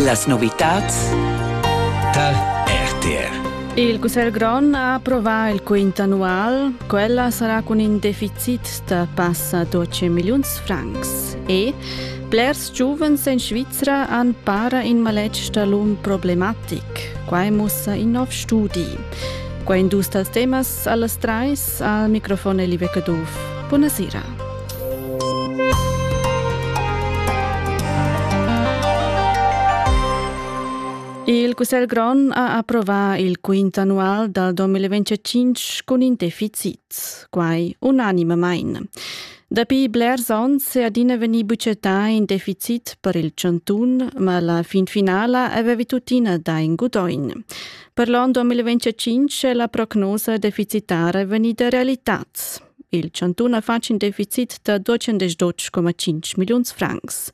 Las novitads tar RTR. Il Cussegl grond ha approvà il quint annual. Quella sarà cun in deficit da passa 12 milliuns francs. E blers giuvens en Svizra han para in maletg da l'um problematic. Quai mussa in nov studi. Qua indus dals temas Allas trais al microfon Elive Caduff. Buona sera. Il Cussegl Grond ha approvato il quint annual dal 2025 con in deficit, quai unanimamente. Dapi blers onns è adina venuto buccettà in deficit per il Cantun, ma la fin finala aveva tuttina da in gudoin. Per l'on 2025 è la prognosa deficitara vegnida realitats. Il chantun ha fatg in deficit da 212,5 milliuns francs.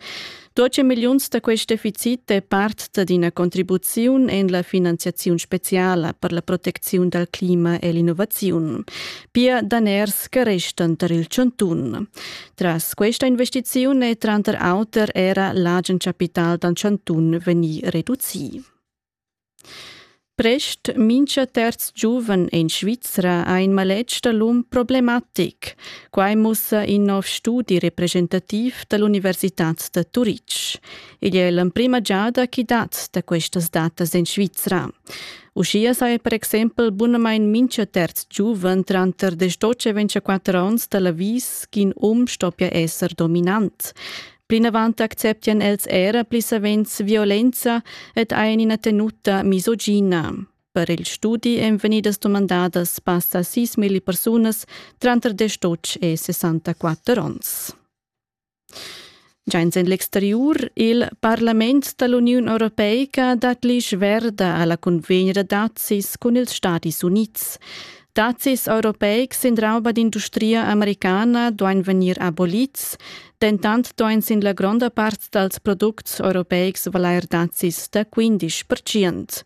12 milliuns da quest deficit è part da d'ina contribuziun en la finanziaziun speciala per la protecziun dal clima e l'innovaziun. Pia daners che restan tar il chantun. Tras questa investiziun è tranter auter era l'agen capital dal chantun vegnì reducì. Prest mincha terz giuven in Svizra ha in maletg da l'um problematic. Quai mussa in nov studi representativ da l'Universitad da Turitg. Igl è l'emprima giada ch'i dat da questas datas en Svizra. Uschia saja per exempel bunamain mincha terz giuven tranter 18 e 24 onns da l'avis ch'in um stoppia esser dominant. Plinavant acceptian els era pli savens violenza ed ein ina tenuta misogina. Per il studi ein vegnidas dumandadas passa sis milli persunas tranter destotg e 64 onns. Giains en l'exteriur, il Parlament dall'Uniun Europeica dat l'isch verda alla convegna dazis cun ils Stadis Unids. Dazis europeics in rauba d'industria americana duain vegnir abolids Dentant ston ins in la gronda part dals products europeics valair dazis da 15 percent.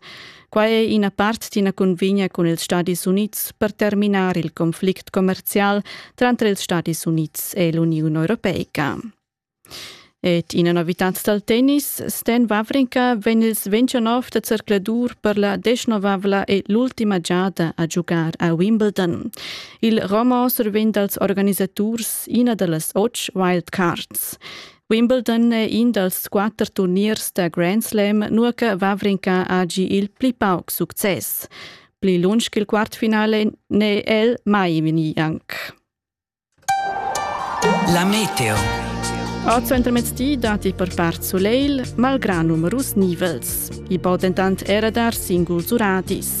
Quai è ina part d'ina cunvigna cun ils Stadis Unids per terminar il conflict commerzial tranter ils Stadis Unids e l'Uniun Europeica. Ed ina novitad dal tennis, Sten Wawrinka vegn il 29 da zercladur per la desnovavla e l'ultima giada a giugar a Wimbledon. Il roman survegn dals organisaturs ina da las otg wildcards. Wimbledon è in dals quatter turniers da Grand Slam, nua che Vavrinka ha gi il pli pauc success. Pli lunsch che il quartfinale n'è el mai vegni anc. La meteo. A centremezdi dati per part soleil, malgrà numerus nivels. I po dentant era dar singuls uradis.